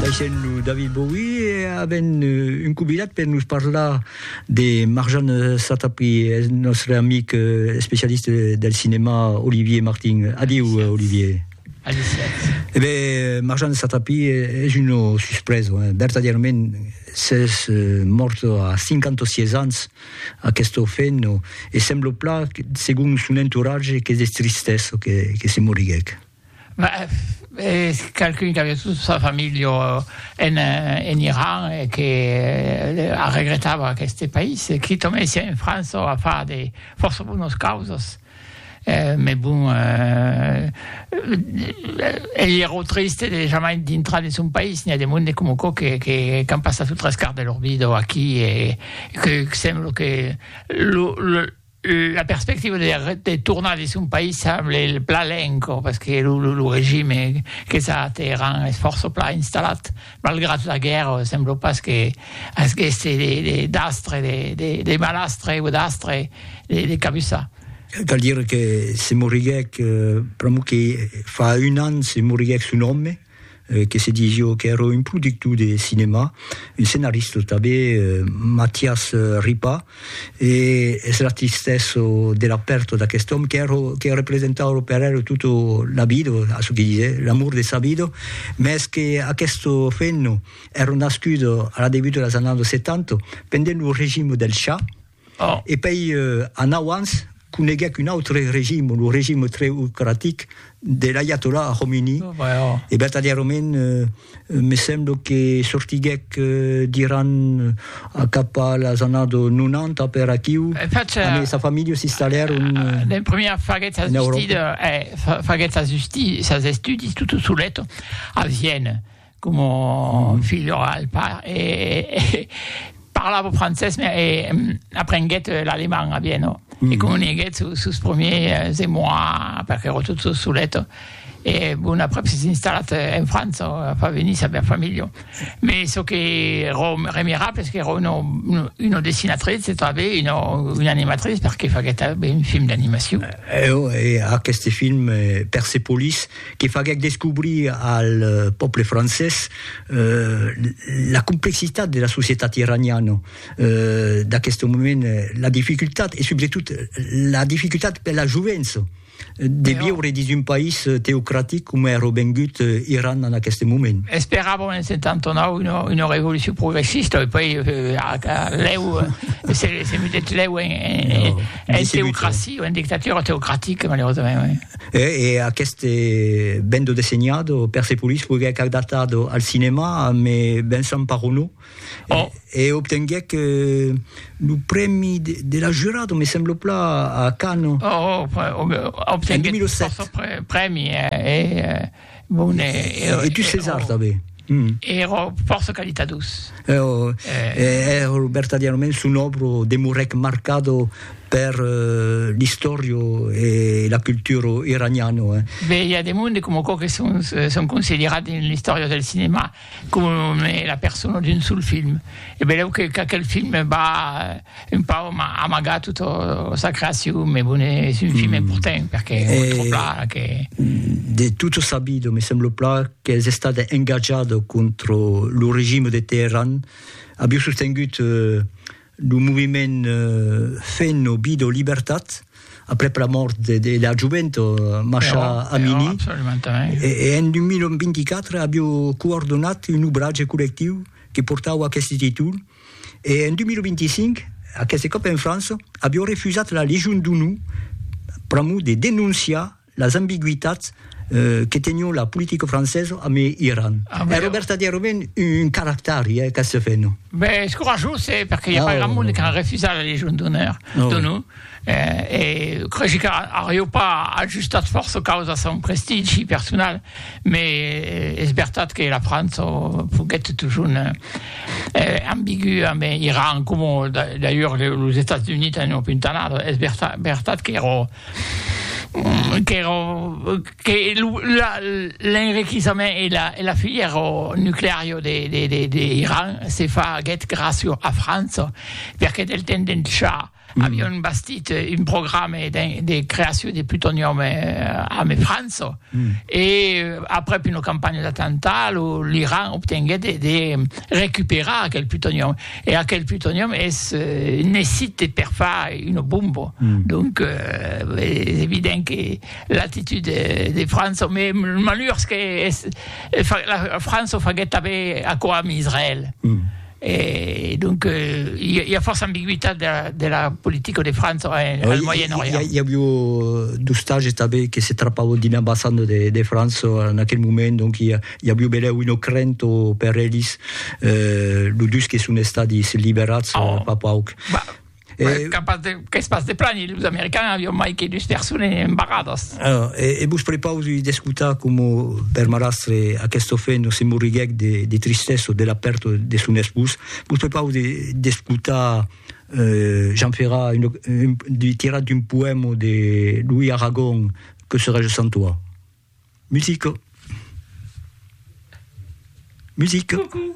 Laissem lo David Bowie e avem un convidat per nos parlar de Marjane Satrapi, eth nòstre amic especialista del cinèma Olivier Martin. Adiu, Olivier. Aliciatz. E ben, Marjane Satrapi es una suspresa, vertadièrament, s'es mòrta a 56 ans, aquesta femna, e sembla plan, segon son entoratge, qu'es de tristesa que se moriguèc. Es qualqu'un qu'aviá tota sa familha en Iran e qu'arregretava aqueste país. Qui tornèsse en França o a far de fòrça bonas causas. Mès bon, ei ero triste de jamai dintrar de son país. N'i a de monde coma aquò qu'an passat lo tres quart de lor vida aquí e que sembla que lo La perspectiva de tornar dins son país semble plan lenca, pas que lo regime qu'es a Teheran es fòrça plan installat, malgrat la guèrra, sembla pas que asgesse d'astre, de malastre o d'astre de cabussar. Cal dire que se moriguèc pr'amor que fa un an, se moriguèc son òme. que se dís jo qu'èra un productor de cinèma, un scenarista tanben, Matias Ripa, e es la tristesa de la pèrta d'aquest òme qu'èra, que representava per el tota la vida, a çò que disè, l'amor de sa vida, mès qu'aquesta femna èra nascuda a la degut de las annadas 70, pendent lo regime del Shah, E pei anau ans coneguec un autre regime, lo regime treocratic de l'aiatollah Khomeini, e vertadièrament me semblo que sortiguec d'Iran a cap a las annados 90 per aquiu, amb sa familha s'installèron en Euròpa. Como filho al pair e parlavo francés me e aprenguèt l'alemand a Vieno e comuniguèt sos promiers emois perque ero tot so solet e bon aprèp s'es installat en França a far venir sa bèr familha me çò que ero remirable es qu'ero uno uno dessinatrice e tanbe uno una animatrice perque faguèt ben film d'animacion. Eo e aqueste film Persepolis que faguèc descobrir al pòble francés la complexitat de la societat iraniana d'aqueste moment, la dificultat, e subretot la dificultat per la jovença de viure dins un país teocratic coma èra vengut Iran en aqueste moment. Esperàvem en 79 una, una revolucion progressista, e puèi lèu se, se mudèt lèu en, en, en teocracia, en dictatura teocratica, malerosament. E aqueste bendo dessenhado, Persepolis, foguèc adaptado al cinèma ame Vincent Parronneau e obtenguèc lo prèmi de la jurado, me semblo pla, a Cannes, en 2007. Obtenguèt fòrça prèmi, e Bon, e... E tu ses art, tanben? Ero fòrça calitadós. Ero, ero vertadièrament son òbro demorèc marcado per l'istòria e la cultura iraniana, eh. Be, i a de monde coma aquò que son, son considerat dins l'istòria del cinèma coma la persona d'un sol film. E benlèu qu'aquel film va... Un pau m'a amagat tota sa creacion, me bone, es un film important, perque me tròb plan que. De tutto sabido, me semblo plan qu'es estat engatjat contra lo regime de Teheran, aviu sostengut lo moviment Fen o Vida o Libertat, aprèp la mòrt de de la jovent Masha Amini, e en 2024 aviu coordonat un obratge collectiu que portava aqueste títol, E en 2025, aqueste còp en França, avió refusat la Legion d'Onor pr'amor de denonciar las ambigüitats que tenió la politica francesa amb Iran. Ero vertadièrament un caractari, eh, aqueste fenon. Ben, es corajós, eh, perque i a pas grand monde qu'a refusat la Legion d'Onor. E creshi qu'arriu pas ajustat fòrça caus a son prestigi personal, me es vertat que la França foguèt totjorn ambigua, me Iran coma d'ailleurs los Estats Units a una puntanada, es vertat qu'èra qu'èra que lo l'enriquissament e la e la filièra nucleària de de de Iran se faguèt gràcia a França, perque del temps d'en Shah Avion bastit un programa de creacion de plutonium ame França e aprèp una campanha d'atemptat lo l'Iran obtenguèt de recuperar aquel plutonium e aquel plutonium es necite per far una bomba donc es evident que l'actitud de França me malhurs que es la França faguèt tanben aquò ame Israèl. E donc i a fòrça ambigüitat de la politica de França en al Moyen Orient. I avió d'ostages tanben que se trapavon dins l'ambassanda de França en aquel moment, donc i avió belèu una crenta per elis, los dus que son estadis liberats fa pauc. E... Beh, capaz de, qu'es pas de plani, los americans avion mai que dus persones embarradas. Alors, e, e vos prepausi d'escutar como per marastre aquest ofeno se morriguèc de, de tristessa de la pèrta de son espós. Vos prepausi d'escutar euh, Jean Ferrat, un, un, du, tirat d'un poèma de Louis Aragon, Que serais-je sans toi? Musique. Musique. Coucou.